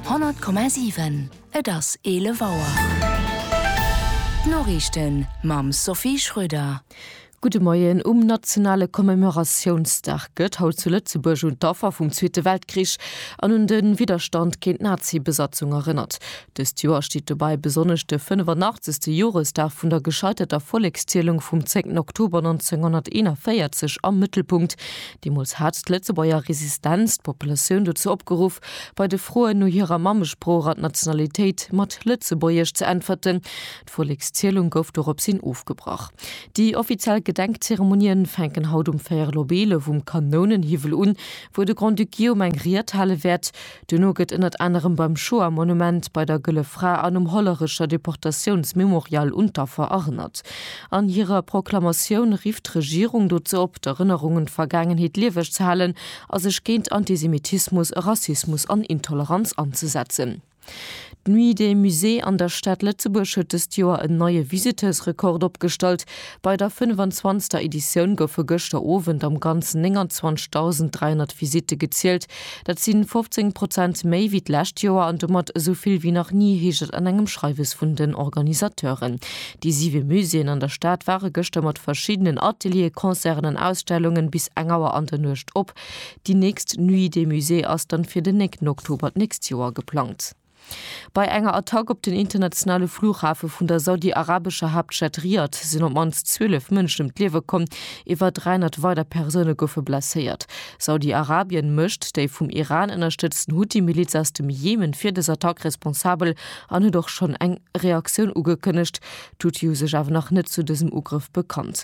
100,7 Et ass 11 Auer. D'Noriichten mam Sophie Schröder. Gudde Moien. Um nationale Commemoratiounsdag gëtt haut zu Lëtzebuerg un d'Affer vum Zweete Weltkrich an un de Widderstand géint d'Nazi-Besatzung erënnert. Dëst Joer steet dobäi besonnesch de 85. Joresdag vun der gescheiterter Vollekszielung vum 10 Oktober 1941 am Mëttelpunkt. Deemools hat d'Lëtzebuerger Resistenz d'Populatioun dozou opgeruff, bei de Froen no hirer Mammesprooch an Nationalitéit mat Lëtzebuergesch ze äntwerten. D'Vollekszielung gouf doropshin ofgebrach. Déi offiziell Gedenkzeremonien fänken haut um Fäerel op 11 um Kanounenhiwwel un, wou de Grand-Duc Guillaume eng Ried hale wäert. Duerno gëtt ënnert anerem beim Shoah-Monument, bei der Gëlle Fra an um Hollerecher Deportatiounsmemorial un d'Affer erënnert. An hirer Proklamatioun rifft d'Regierung dozou op, d'Erënnerung un d'Vergaangenheet lieweg ze halen a sech géint Antisemitismus, Rassismus an Intoleranz anzesetzen. D'Nuit des Musées an der Stad Lëtzebuerg huet dëst Joer en neie Visiteursrekord opgestallt. Bei der 25. Editioun goufe gëschter Owend am Ganzen 29.300 Visitte gezielt. Dat si 15 Prozent méi wéi d'lescht Joer an domat esou vill wéi nach ni, heescht et an engem Schreiwes vun den Organisateuren. Déi siwe Muséeën an der Stad ware gëschter mat verschiddenen Ateliere, Concerten an Ausstellunge bis eng Auer an der Nuecht op. Déi nächst Nuit des Musées ass dann fir den 9 Oktober d'nächst Joer geplangt. Bei enger Attack op den internationale Flughafe vun der saudi-arabescher Haaptstad Riyadh sinn op d'mannst 12 Mënschen ëm d'Liewe komm, iwwer 300 weider Persoune goufe blesséiert. Saudi-Arabien mécht déi vum Iran ënnerstëtzten Huthi-Miliz aus dem Jemen fir dës Attack responsabel an huet och schonn eng Reaktioun ugekënnegt. D'Huthi hu sech awer nach net zu dësem Ugrëff bekannt.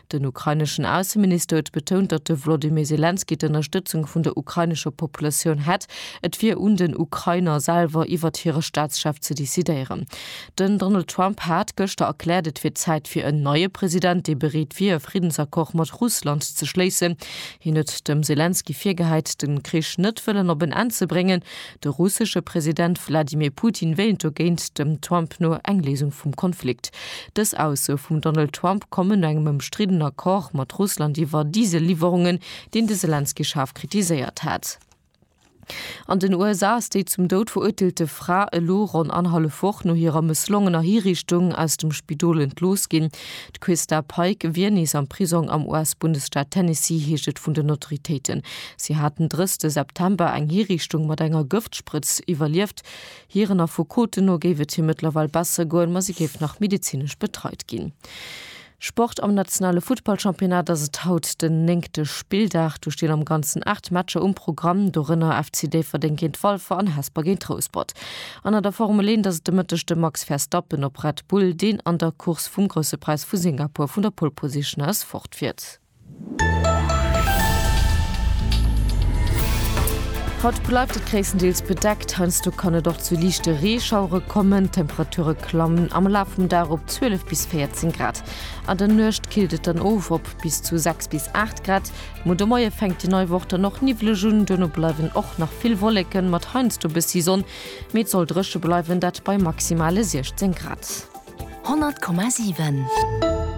Den ukraineschen Ausseminister huet betount, datt de Wlodymyr Selenskyj d'Ënnerstëtzung vun der ukrainescher Populatioun hätt. Et wier un den Ukrainer selwer iwwert hire Staatschef ze decidéieren. Den Donald Trump hat gëschter erkläert, et wier Zäit fir en neie President, dee bereet wier e Friddensaccord mat Russland ze schléissen. Hien huet dem Selenskyj virgehäit, de Krich net wëllen op en Enn ze bréngen, De russesche President Wladimir Putin wéilt dogéint dem Trump no eng Léisung vum Konflikt. Dës Aussoe vum Donald Trump kommen no engem ëmstriddene Accord mat Russland iwwer Diesel-Liwwerungen, deen de Selenskyj schaarf kritiséiert hat. An den USA ass déi zum Doud verurteelte Fra elo ronn annerhallef Woch no hirer mësslongener Hiriichtung aus dem Spidol entlooss ginn. D'Quista Pike wier nees am Prisong am US-Bundesstaat Tennessee, heescht et vun den Autoritéiten. Si hat den 30 September eng Hiriichtung mat enger Gëftsprëtz iwwerlieft. Hiren Affekoten no géif et hir mëttlerweil besser goen, ma si géif nach medezinesch betreit ginn. Sport, Am nationale Futtballchampionnat ass et haut den néngte Spilldag. Do stinn am Ganzen 8 Matcher um Programm, dorënner FC Déifferdeng géint Walfer an Hesper géint Rouspert. An an der Formel 1 ass et de Mëtteg de Max Verstappen op Red Bull, deen an der Course vum Grousse Präis vu Singapur vun der Pole Position aus fortfiert. Haut bleift et gréisstendeels bedeckt, heiansdo kann et och zu liichte Reeschauere kommen. D'Temperature klammen am Laf vum Dag op 12 bis 14 Grad. An der Nuecht killt et dann of op bis zu 6 bis 8 Grad. Muer de Moie fänkt déi nei Woch dann och niwweleg un, duerno bleiwen och nach vill Wolleken, mat heiansdo bëssi Sonn, mee et soll dréche bleiwen, dat bei maximale 16 Grad. 100,7.